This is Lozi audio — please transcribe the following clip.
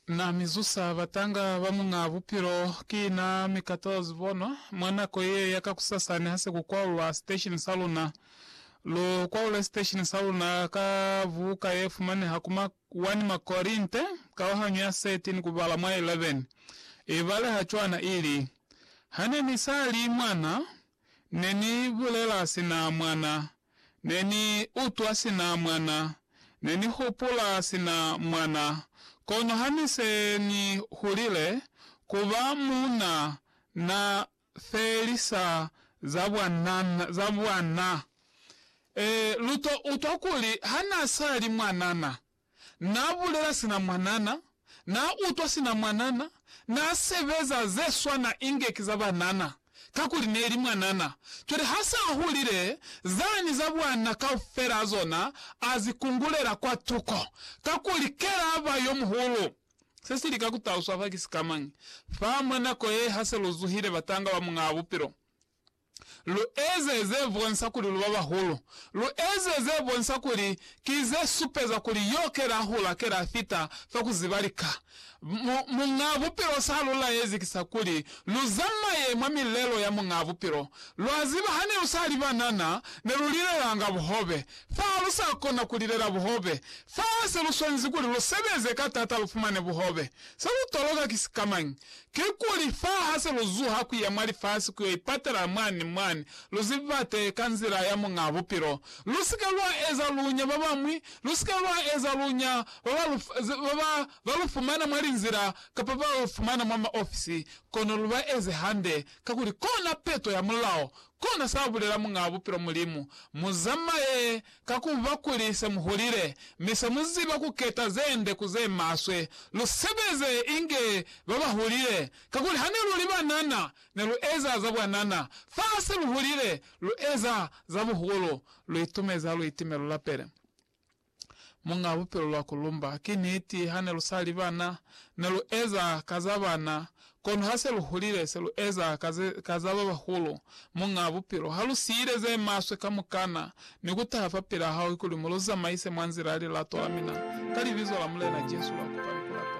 Na mi zusa batanga ba muñaa bupilo, ki na mi ka tola zibono. Mwa nako ye ya ka kusasani ha se ku kwaulwa siteshini sa luna, lu kwaule siteshini sa luna ka buka ye fumaneha ku ma 1 Makorinte kauhanyo ya 13 ku bala mwa 11. I baleha cwana, i li, Ha ne ni sa li mwana, ne ni bulela sina mwana, Ne ni utwa sina mwana, ne ni hupula sina mwana, kono ha ni se ni hulile, ku ba muuna na felisa za bwana, za bwana. E, lu to utwa kuli ha na sa li mwanana, Na bulela sina mwanana, na utwa sina mwanana, na sebeza ze swana inge ki za banana, kakuli neli mwanana. Cwale ha se a hulile, zani za bwana kaufela a zona a zi kungulela kwa tuko, kakuli kela ba yo muhulu. Se si lika ku taluswa fa ki sikamañi fa mwa nako ye ha se lu zuhile batanga ba Muñaa Bupilo? Lu eze ze bonsa kuli lu ba bahulu. Lu eze ze bonsa kuli ki ze supeza kuli yo ke la hula, ke la fita fa ku ziba lika. Mu, Muñ'a Bupilo sa lu laezi ki sa kuli lu zamaye mwa milelo ya Muñ'a Bupilo. Lwa ziba hane lu sa li banana, ne lu lilelanga buhobe. Fa lu sa kona ku lilela buhobe, fa se lu swanezi kuli lu sebeze ka tata lu fumane buhobe. Se lu toloka ki sikamañi? Kikuli, fa ha se lu zuha ku ya mwa lifasi ku yo ipatela mwani ni mwani, lu ze bibate ka nzila ya Muñaa Bupilo. Lu si ke lwa eza lunya ba bañwi, lu si ke lwa eza lunya ba ba lu, ba ba, ba lu fumana mwa linzila kapa ba lu fumana mwa maofisi, kono lu ba eze hande, kakuli kona peto ya mulao, kona sa bulela Muñaa Bupilo Mulimu, Mu zamaye Ka ku ba kuli se mu hulile mi se mu ziba ku keta ze nde ku ze maswe, lu sebeze inge ba ba hulile. Kakuli ha ne lu li banana, ne lu eza za bwanana, fa ha se lu hulile, lu eza za buhulu, lu itumezi ha lu itime lu lapele Muñ'a Bupilo lwa ku lumba. Ki niti, ha ne lu sa li bana, ne lu eza ka za bana, Kono ha se lu hulile, se lu eza ka ze, ka za ba bahulu, Muñaa Bupilo. Ha lu siile ze maswe kamukana, ni ku taha fa pila Hae kuli mu lu zamaise mwa nzila ya lilato la mina, ka Libizo la Mulena Jesu, lwa kupa ni ku lapela.